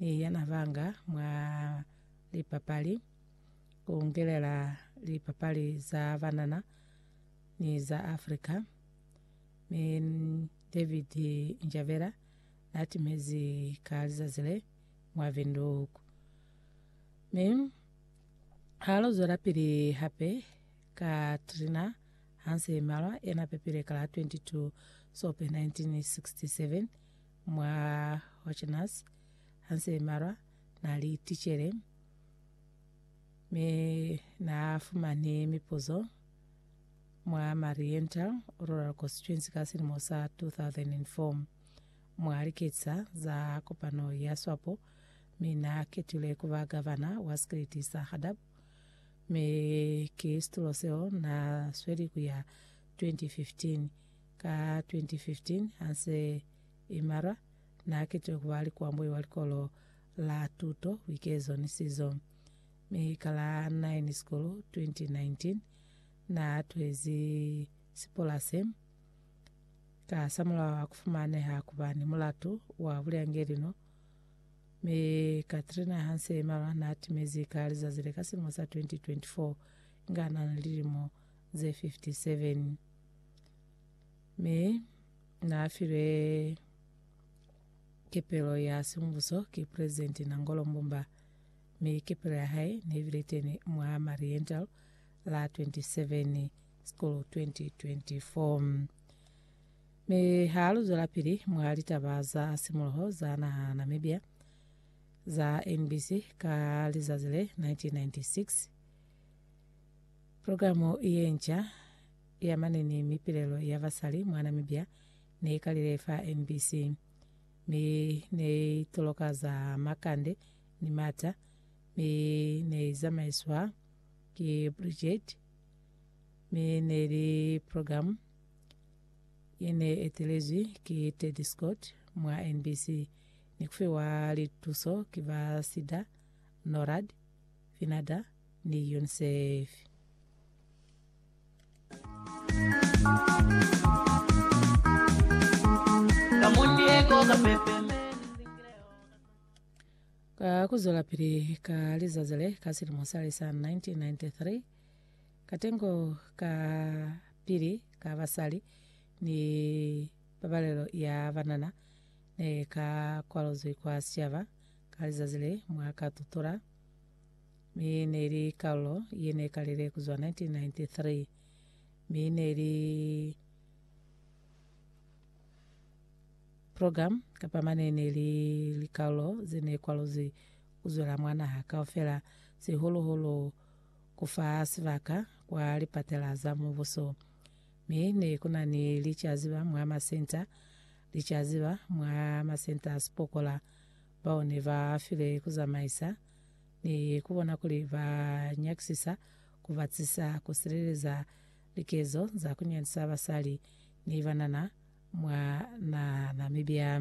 ni yena banga mwa lipapali, ku ngelela lipapali za banana ni za Afrika. Mi David Njavela na timezi ka lizazi le mwa Windhoek. Mi ha lo zwelapili hape ka Trina Hanse Malwa yena pepile ka la 22 Sope 1967, Mwa Hotchkinas, Hansel Marwa na li ticele, mi na fumani mipuzo mwa Mariental Rural Constituency ka silimo sa 2004. Mwa liketisa za kopano ya Swapo, mi na ketilwe kuba gavana wa sikiliti sa Hadab, mi ki situlo seo na sweli kuya 2015. Ka 2015, ha nse i malwa, n'a ketilwe ku ba likwamboi wa Likolo la Tuto, Buikezo ni Sizo. Mi ka la 9 Sikulu 2019, n'a tuhezi sipolase. Ka samulaho ha ku fumaneha ku ba ni mulatu wa bulyangelino, mi Katrina ha nse i malwa n'a timezi ka lizazi le ka silimo sa 2024 inga n'a na lilimo ze 57. Mi naafilwe kepelo ya sembuso ki President Nangolo Mbumba, mi kepelo ya hae nebile teni mwa Mariental la 27 School 2024. Mi ha luzwela pili mwa litaba za simuloho za naha Namibia za NBC ka lizazi le 1996, Pulogalamu ye nca ya mane ni mipilelo ya basali mwa Namibia ne i kalile fa MBC, mi ne i toloka za makande ni mata, mi ne i zamaiswa ki Bridget, mi ne li pulogalamu ye ne etelezwi ki Teddy Scott mwa NBC ni kufiwa lituso ki ba Sida, Norad, Finada, ni UNICEF. Ka ku zwelapili ka lizazi le, ka silimo sale sa 1993, katengo ka pili ka basali ni pabalelo ya banana ne ka kwaluzwi kwa sicaba ka lizazi le mwa ka tutola Mi neli kalulo ye ne kalile kuzwa 1993, mi neli program kapa mane neli likalulo ze ne kwaluzwi kuzwela mwa naha kaufela, sihulu hulu kufa sibaka kwa lipatela za Mubuso. Mi ne kuna ni licaziba mwa masenta, licaziba mwa masenta a sipokola bao ne ba file kuzamaisa ni ku bona kuli ba nyakisisa ku batisa ku sileleza likezo za ku nyandisa basali ni banana mwa naha Namibia.